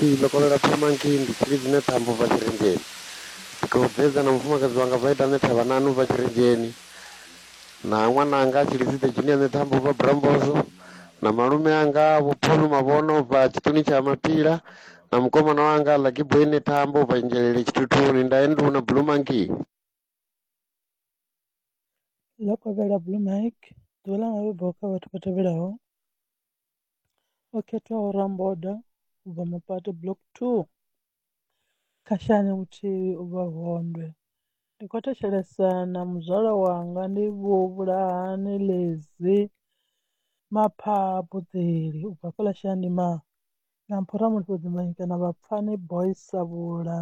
Ee, ndo kovhela phama ngei nḓitshini dzine dza ambo bva Tshirenzheni. Ndi khou dzedza na mufumakadzi wanga bva ita ane thavha nanu bva Tshirenzheni, na ṅwana anga a Tshilidzide dzine ane thambo bva Brambozo, na malume anga vho Phulu Mavhono bva Tshiṱuni tsha Mapila, na mukomana wanga Lucky Boy ne thambo bva Nzhelele Tshithuthuni, nda endu na Blue Monkey. Ndo kovhela Blue Mike, ḓuvha ḽa mabebo kha vhathu vha tevhelaho, o khethaho Ramboda u bva Mapate Block 2, Khashane Muthihi u bva Vondwe. Ndi khou thetshelesa na muzwala wanga ndi vho Vhulahani Lezi Maphaa Budzeli u bva fhaḽa Shandimai na Mphora Mulifhedzi Manyikenza na Vhapfani Boys Savhula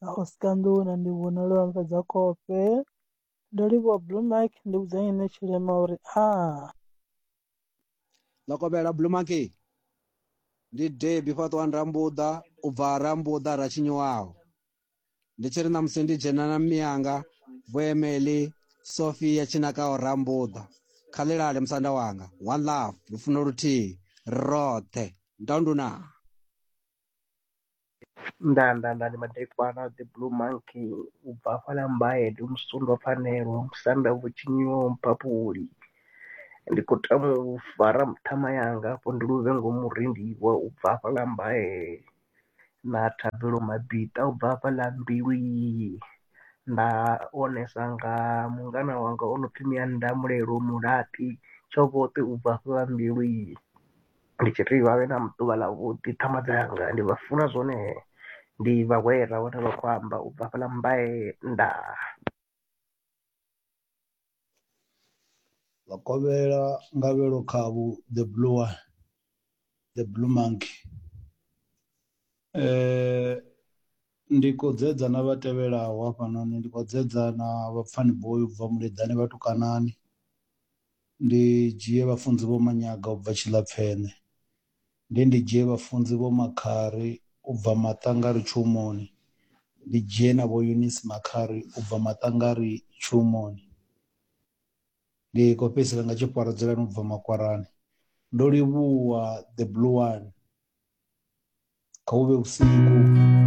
na Oscar Nḓou na Ndivhona Lwamufhedzakhofhe. ndo livhuwa blue mark ndi vhudza nyene tshilema uri a ḽo kovhela blue mark ndi debi fhaṱwa ndambuḓa u bva rambuḓa ra tshinyiwaho ndi tshi ri ṋamusi ndi dzhena na miyanga vhuemeli sofia tshinakaho rambuḓa kha ḽilale musanda wanga one love lufuno luthihi roṱhe ndonduna Nda nda nda ndi madekwana the blue monkey u bva hafhaḽa mbaye ndi musundwa pfhanelwa musanda vho tshinyiwa mphaphuli ndi khou tama u fara ṱhama yanga afho ndi luvhe ngomu rendiwa u bva hafhaḽa mbaye na thabelo mabiḓa ubva hafhaḽa mbilwi nda onesa nga mungana wanga o no pfhi Mianda mulelo mulaṱi tshoṱhe ubva hafhaḽa mbilwi. ndi tshi ri vha vhe na ḓuvha ḽa vhuḓi ṱhama dzanga ndi vha funa zwone ndi vha hwera vhone vha khou amba u bva hafhaḽa mmbae ndaa. Vhakovhela Ngavhelo Khavhu the blue one the blue monkey. Ndi khou dzedza na vha tevhelaho hafhanoni, ndi khou dzedza na vhapfani boi u bva Muleḓane vhatukanani, ndi dzhie vhafunzi vho Manyaga u bva Tshilapfene, ndi ndi dzhie vhafunzi vho Makhari u bva Maṱangari Tshihomoni, ndi dzhie na vho Eunice Makhari u bva Maṱangari Tshihomoni. ndi khou fhedzisela nga tshipwara dzulani ubva makwarani ndo livhuwa the blue one kha hu vhe vhusiku